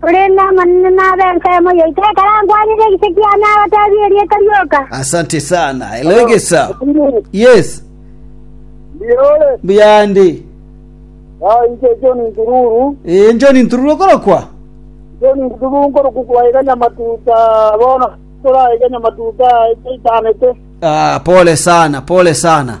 Korende Amanene nabe ensemo yaito ekero ankwanire egise kiane agoteebie erieta rioka. asante sana elegesa yes Ndiore, mbuyande ah, inche John Ntururu, enjo nintururu okorokwa John Ntururu nkoruku kwaiganya matuta, bono turaiganya matuta etaitanete. ah, pole sana pole sana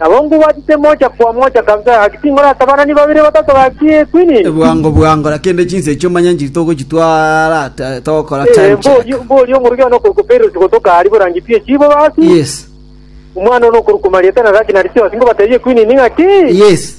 Nabo nkobwatete mocha kwa mocha kabisa, gaki tinkoratabanania babere batato gaki ekwini. Bwango bwango, na kende chinsa echio manya nchiri togochitwara ata togokora Eh, time check. mboria mboria omorweki one okoruka Perusi gotoka aria borangi pi echibo basi. Yes. Omwana one okoruka Marieta na Raki na Lisiasi nkobatebie ekwini ng'aki. Yes.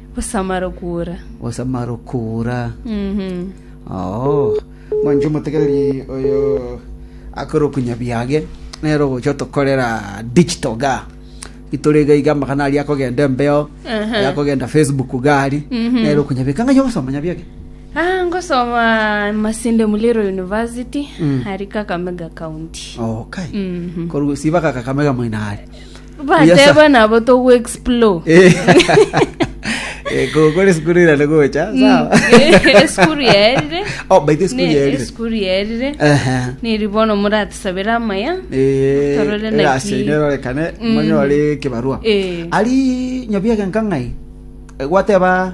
Gosamara okoura. Gosamara okoura. Oo, mwanche omotegereri oyo akore okonyabiage, nere ogocha otokorera digital ga. Itore iga iga amagana aria akogenda embeo, Aha. aya akogenda Facebook gari, nere okonyabiage. Kang'ai ogosoma nyabiage? Ah, ngosoma Masinde Muliro University, ari Kakamega County. Okay. Mhm. Koru siba ka Kakamega moino are. Bateba nabo togu explore. Eh, eh, go- gore sukuru irane gocha sawa Esukuru yaerire. Oh, by the way, sukuru Ne- yaerire. Esukuru yaerire. Ehe. Niri bono muratisabera amaya. Eh, Torore eh, naki. ase nyerorekane Mm. monyore kibarua Eh. ari nyabiege nkang'ai Eh, gwateba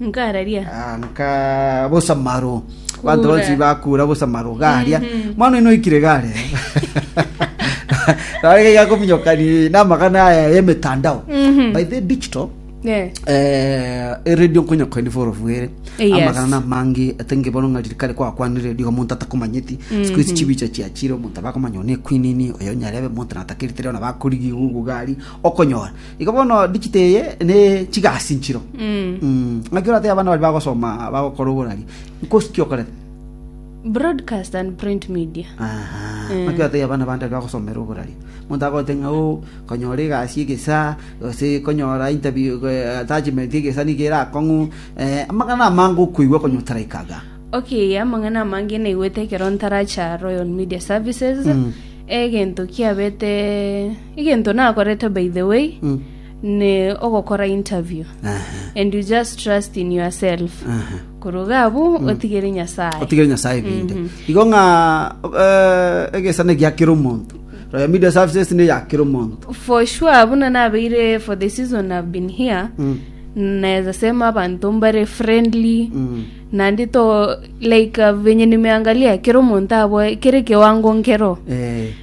Nkararia. Ah, nka bosamaro banto Kura. bonsi bakura bosamaro garia mwana oino oikire gare arege gakominyokani namagana aya yemetandao by the digital Eh. eh, eredio nkonyokoeni forofwere Eh, yes. amagana namange atenge bono ng'a ririkari kwakwanire redio omonto atakomanyeti sikuisi chibicha chiachire omonto abakomanya one ekwinini oyo nyarebe omonto natakerite rero nabakorigi gugu gari okonyora Igo bono digito eye ne chigasinchiro. Mm. Ng'aki oratebe abana bari bagosoma bagokora oborari. Nkosi ki okorete? Broadcast and print media. Aha. Eh. Ng'aki oratebe abana bande bari bagosomera oborari. Monto agote ng'a o konyora egasi egesa gose konyora interview eh, attachment egesa nigo erakong'u. Eh, amang'ana amange okoigwa konyota like aga. Okay, amang'ana amange naigwete ekero ntaracha Royal Media Services. Mm. Egento kiabete Egento nakorete by the way ne ogokora interview and you just trust in yourself. Korwa iga abwo otigere Nyasaye. otigere nyasaye binde igo ng'a eh, egesana egia kera omonto royal media services ne ya kera omonto For sure buna nabeire for the season I've been here. Naeza sema abanto mbare friendly. Nandi to like uh, venye nimeangalia kera omonto aboe kere kiwango nkero. Eh,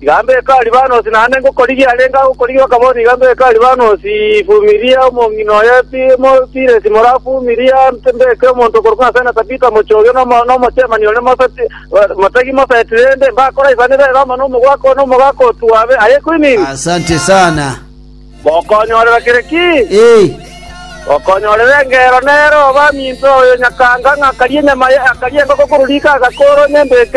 Iga mbeke Alibanosi, naende ngokorigia arenge agokorigia okaboni, iga mbeke Alibanosi, fumiria omong'ina oye, mo Tiresi moraa fumiria, mbeke omonto okorokwa Asana Tabita mochie oyio na omochemani one moseti, motegi moseti, rende mbakoraisanere ere amo nomogwaka one omogaka otwabe. Aye Quinini. Asante sana. Gokonyorera kere ki? Ee. Gokonyorera engero nere obaminto oyo nyakanga ng'a akarie enyama ye, akarie engoko korwa riko agakoora onye mbeke.